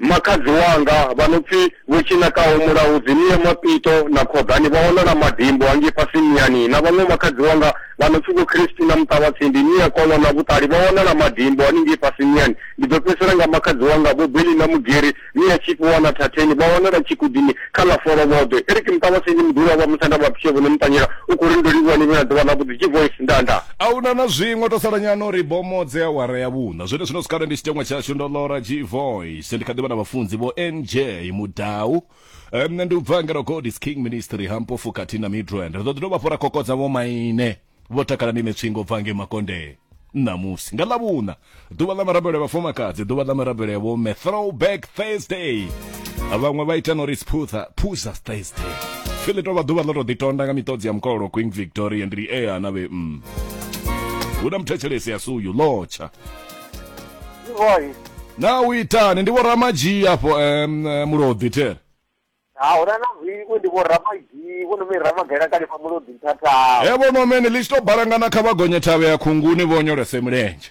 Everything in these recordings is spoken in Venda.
Makhadzi wanga vha no pfi Vho Tshinakaho Mulaudzi, Nia Mapito na Khoḓani vha wanala Madimbo hangei fhasi Niyani, na vhaṅwe makhadzi wanga vha no pfi Vho Christina Muṱavhatsindi, Nia Kolo na Vhuṱali vha wanala Madimbo haningei fhasi Niyani. Ndi ḓo fhedzisela nga makhadzi wanga Vho Belina Mugeri, Nia Tshifhiwa na Thatheni vha wanala Tshigudini kha ḽa Folovhoḓwe. Eric Muṱavhatsindi Muḓulu wa vha Musanda vha Bishop Vho Muṱanyela u khou ri, Ndo livhuwa ni vhe na ḓuvha ḽavhuḓi. G-Voice, Ndanda. A hu na na zwiṅwe, tou sala nyana uri bomo dze awara ya vhuṋa. Na zwenezwino zwikale ndi tshiteṅwa tshashu ndo lora g voice ndi kha ḓivha na vhafunzi vho nj mudau um, nṋe ndi u bva ngeno god is king ministry ha mpofu khathihi na midrand ri ḓo ḓi dovha hafhu ra kokodza vho maine vho takala ni netswingo bva nge makondee ṋamusi nga ḽavhuṋa ḓuvha ḽa mirabelo ya vhafumakadzi ḓuvha ḽa mirabelo ya vhomme throwback thursday vhaṅwe vha ita nori sphutha phuza thursday fili tovha ḓuvha ḽo to ḓitonda nga miṱodzi ya mukololo queen victoria ndi ea na vhe mm. hu na muthetshelesi a si uyu lotsha Boy. na u itani ndi vhoramadzhii afho um, muloḓi there Ha hona na vhiku ndi vho ramagi, vho no me ramagela kale pa mulodi nthata. he vhono mene ḽi tshi tou balangana kha vha gonye thavhe ya khunguni vho nyolese milenzhe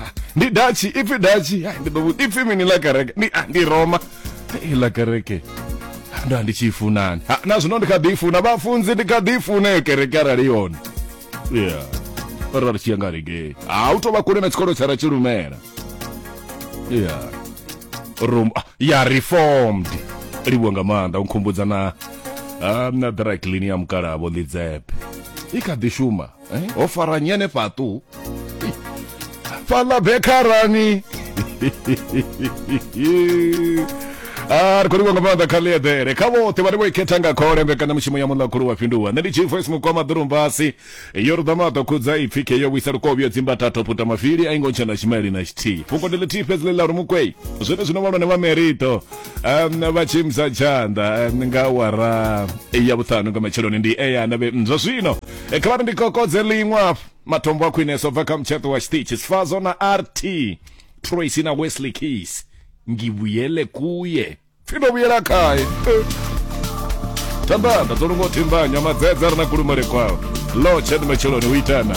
ah, ndi dachi ipfi dachi ah, ndi ḓo vhudzisa ipfi mini ḽa kereke ndi ah, ndi roma Eh, ḽa kereke Ah, ndo ndi tshi i funani Ah, na zwino ndi kha ḓi i funa vhafunzi ndi kha ḓi i funa iyo kereke arali yone ya ra ri tshi ya nga regei ha u tou vha kule na tshikolo tsha ra tshi lumela ya Rom ah, ya reformed livhuwa nga maanḓa u nkhumbudza na ah, na dry clean ya mukalabo ḽidzepe i kha ḓi shuma eh, ho fara nyi hanefhaṱu fhaḽa bekharani a ri khou livha nga maanḓa kha ḽiedere kha vhoṱhe vhane vho i khetha nga khole mbekanyamushumo ya muḽa khulu wa fhinduwa nṋe ndi chief voice mukwama ḓurumbasi yo ri ḓama ḓo khudza ipfi khe yo vhuisa lukovho yo dzimba thatho puta mafili a i ngo tshena tshimaili na tshithihi fhungo ndi ḽithihi fhedzi ḽi ḽa uri mukwei zwene zwino vhalwane vha merito um vha tshimza tshanḓa um, nga wara ya vhuṱhanu nga matsheloni ndi eyana vhe zwa zwino e kha vhari ndi kokodze ḽiṅwe afho matombo a khwineso bva kha mutsheṱo wa tshiṱitshi sifazo na rt tracy na wesley case ngivuyele kuye pfi ndo vuyela khaye thandanda dzo lungo thimbanywa madzedza ri na kulumele kwao lotshed matsheloni u itana